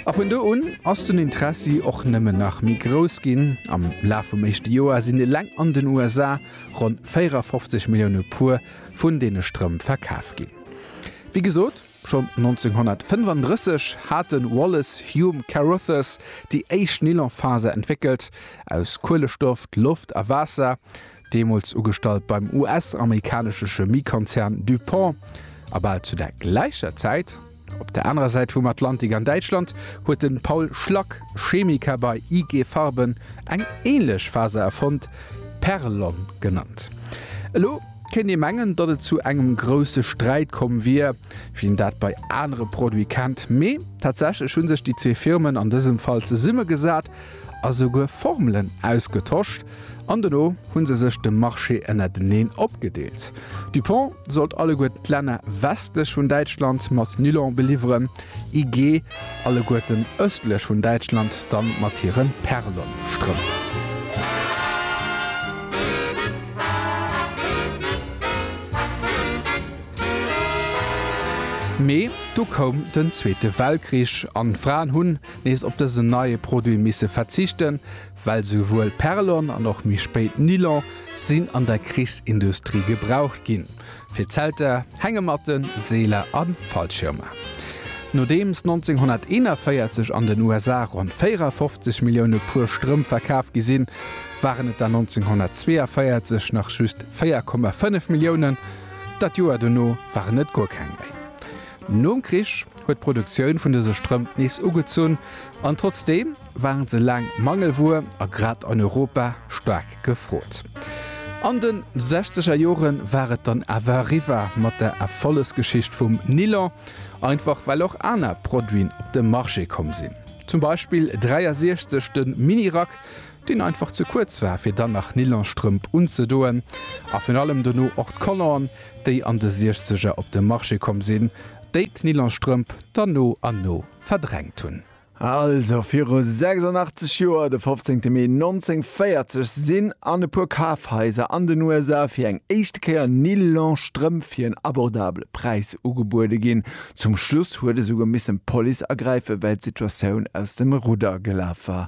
A vun do un ass den Interessi och nëmmen nach méi grouss ginn. Am Laf vum éischte Joer sinn eleng an den USA ronn 54 Millioune Puer vun deene Strëmp verkaf ginn. Wéi gesot, schonn 1935 hat de Wallace Hume Carothers déi éischt Nylonfaser entwéckelt, aus Kuelestoff, Loft a Waasser. deemools ugestallt beim US-amerikanesche Chemiekonzern DuPont, a bal zu der gläicher Zäit, op der anerer Säit vum Atlantik an Däitschland, huet de Paul Schlack, Chemiker bei IG Farben, eng änlech Faser erfonnt, Perlon genannt. Elo kéint ee mengen, datt et zu engem grousse Sträit komm wier, wéi een dat bei anere Produite kennt, mee tatsächlech hu sech déi zwee Firmen an dësem Fall zesummegesat, a souguer Formelen ausgetosch an dono hu se sech de Marché ënnerteneen opgedeelt. Dupont sollt alleguer d'Länner westlech vun Däitschland mat Nylon beliwweren, IG alleguerten ëstlech vun Däitschland dann mat hire Perlon-Strëmp. Mee du koum den zweete Weltkrich an d'Fraen hunn, nees op dësen neie Produit misse verzichten, well souwuel Perlon an och méi spéit Nylon sinn an der Krichsindustrie gebraucht ginn, fir Zelter, Hängematten, Seeler a Fallschirmer. Nodeems 1941 an den USA ronn 54 Millioune Puer Strëmp verkaf gi sinn, waren et der 1942 nach just 4,5 Milliounen, dat Joer dono waren et guer keng méi. Nom Krich, huet d'Produktioun vun dëse Strëmp nees ugezunn an trotzdeem waren se laang Mangelwuer a grad an Europa staark gefrot. An de sechzeger Jore war et dann awer eriwwer mat der Erfollegsgeschicht vum Nilon, einfach well och aner Produiten op de Marché komm sinn. Zum Beispill 63 de Mini-Rack, deen einfach ze kuerz war fir dann nach Nilonstrëmp unzedoen a virun allem dono och d'Collanten, déi an de siechzeger op de Marché komm sinn, déi d'Nylonstrëmp dann no an no verdrängt hunn. Also viru 86 Joer, de 15 Mee 1940, sinn an e puer Kafhaiser an den USA fir eng éischte Kéier Nylonstrëmp fir en abordabele Präis ugebuede ginn. Zum Schluss huet esouguer missen d'Police agräifen, well d'Situatioun aus dem Rudder gelaf war.